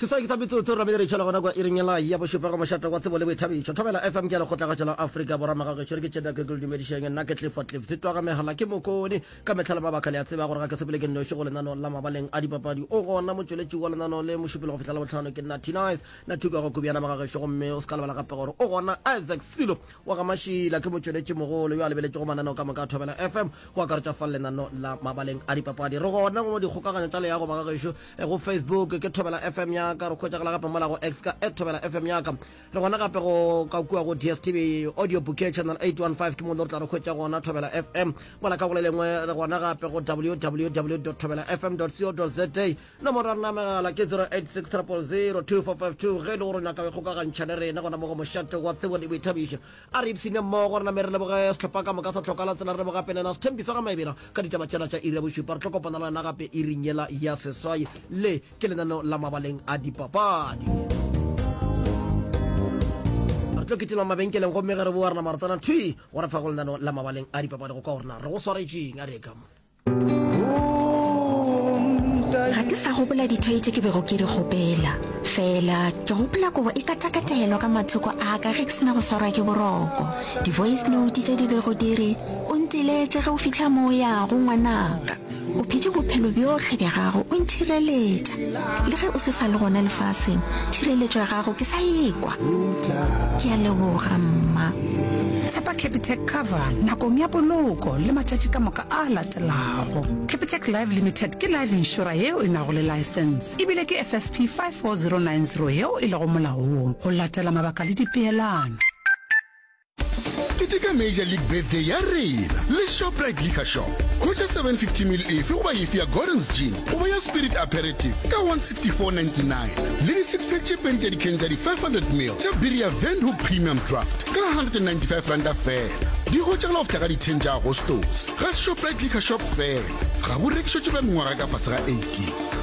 sesaki sa metsotso ra meletšho la gona kwa iringela ya bošupego mošate wa tsebo le boithabišo thobela fm ke ya lekgotlagatšo la afrika borwa magagešo re ke tšheda ke dumedišeng nna ke tlifo tlif se twaga megala ke mokone ka metlha le mabaka le a tseba gore ga ke sepele ke nnoši go lenano la mabaleng a dipapadi o gona motšweletši wa lenano le mošupelo go fihla la botlhano ke nna tinice na thukago kubjana magagešo gomme o se ka lebala gape gore o gona isaac silo wa ga Mašila ke motšweletšimogolo yo a lebeletšego mananeo ka moka a Thobela FM, go akaretša fa lenano la mabaleng a dipapadi. Re gona go dikgokaganyo tša leago ba ga gešo eh, go Facebook ke Thobela FM ya ka, re hwetšagala gape mola go X ka at Thobela FM ya ka. Re gona gape go ka kua go DSTV audio bouquet channel 815 ke mo le re tla re hwetša gona Thobela FM. Mola ka go le lengwe re gona gape go www thobelafm co za Nomoro ya rena ya megala ke 0860002452 ge e le gore o nyaka go ikgokagantšha le rena gona mo go Mošate wa Tsebo le Boithabišo. A re ipshine mmogo rena me re leboge sehlopha ka moka sa Tlhoka la Tsela re leboga gape le yena Sethembiso ga Maebela ka ditaba tšela tša iri ya bošupa. Re tlo kopana le wena gape iring yela ya seswai. Le ke lenaneo la Mabaleng a Dipapadi. Re tlo kitima mabenkeleng gomme ge re boa rena Marotsana thwi go re fa go lenaneo la Mabaleng a Dipapadi go kwa gore na re go swaretšeng. A re ye ka mo. ga ke sa gopola dithai tše ke bego ke di gopela fela ke gopola kobo e katakatelwa ka mathoko a ka ge ke sena go swarwa ke boroko di-voice note tše di bego di re o ntiletše ge o fitlha mo o yago ngwanaka o phete bophelo bjotlhe bja gago o nthireletša le ge o se sa le gona lefaseng thireletšo ya gago ke sa ekwa ke a leboga mma tshepa capitec cover nakong ya poloko le matšatši ka moka a a latelago. Capitec Life Limited ke life inšora yeo e nago le laesense e bile ke FSP 54090 yeo e lego molaong go latela mabaka le dipeelano. Keteka Major League Birthday ya rena le Shoprite Liquor Shop. Hwetša 750 ml efe goba efe ya Gordon's Gin goba ya Spirit Aperitif ka 160. 499 le di-six pack tše pedi tša dikhen tša di-500 mil tša biri ya windhoek premium draft ka 195 ranta fela di hwetšagala go fihla ka di-ten tša agostose ga shoprite liquor shop fela ga bo rekišwe tše ba mengwaga ka fase ga 18